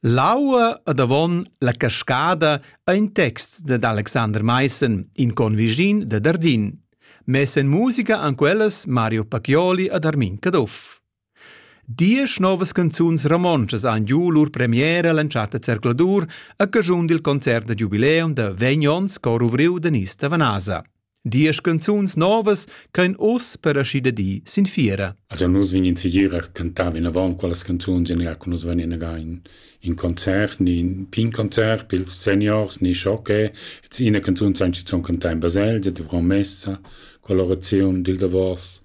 L'aua ed avon la cascada ha in text dad Alexander Maissen, in convischin da Dardin. Mess en musica han quellas Mario Pacchioli ed Armin Caduff. Diesch novas canzuns romontschas han giu lur premiera l'entschatta zercladur a caschun dil concert da giubileum da vegn onns cor ovriu da Nista Vanasa. Diesch canzuns novas ch'ein oz per aschi da di sin fiera. Also nus vegnin segir a cantar vinavon quellas canzuns e neanche nus vegnin again in concert, ni in pin concert pils seniors, ni schoche, et ina canzun san ci zon cantar in baselgia, dovront messa, colorazione dil davos.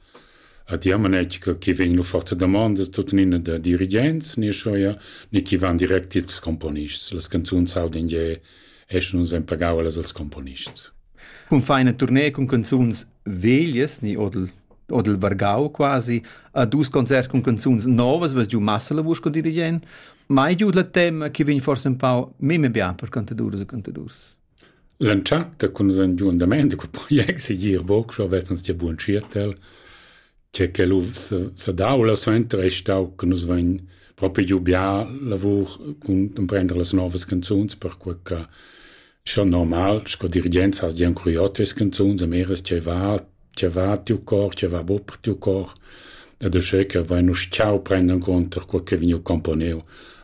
A diamanetsch chi vegn lu forza damondas tuttenina da dirigents, ni schoia, ni chi van direct ils componists. Las canzuns audin je esch nus vein pagau allas als componists. Cun feina tournée cun canzuns veglias ni odel odel vargau quasi a dus concerts cun canzuns novas was giu massa la vusch con dirigent mai giu la tema che vegn forse un pau meme bien per cantadurs e cantadurs L'entschatta cun un giu andament de quel project si gir voc schon vest uns dir buon cirtel che quel u sadau la suenter ei stau che nus vein propi giu bia lavur cun emprender las novas canzuns perquei che schon normal sco dirigent has gian curiotes canzuns a meres che va che va tiu cor che va bu per tiu cor ed uschè che vain uss ciao prenden conter quel che vegniu componeu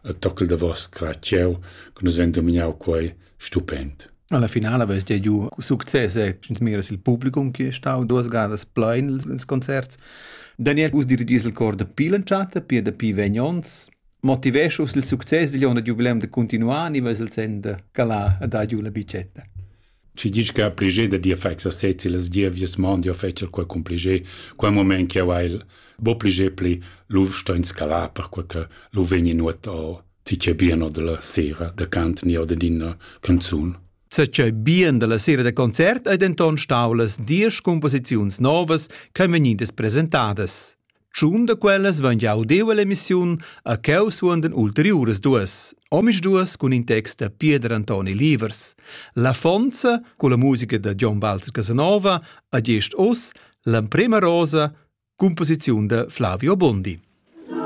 a tockel da vos cra cieu che nus ven dominau quei stupend. Alla finala vess dia giu success e miras il publicum che è stau duas gadas plein ils concerts. Daniel us dirigis il cor da pil entschatta, pia da pi vegn ons, motiveschus il success digl onn da jubileum de continuar ni ves il sen de calar a dar giu la bicetta. Ci dici che a prigé da dir fai sa sezzi las dievies mondi o fecel quel cum prigé, quel moment che ha il bo prigé pli lu sto in scala per quel che lu vegni nuot o Ti c'è bien o della sera da cant ni o ded ina canzun? Sa c'è bien della sera da concert ei denton stau las diesch composiziuns novas ch'ein vegnidas presentadas. Tschun da quellas van jau deu all'emissiun a cheu suondan ulteriuras duas, omisduas cun in text da Pieder Antoni Livers. La fonza, con la musica da John Walter Casanova, a gest oz l'emprema rosa, composiziun da Flavio Bondi.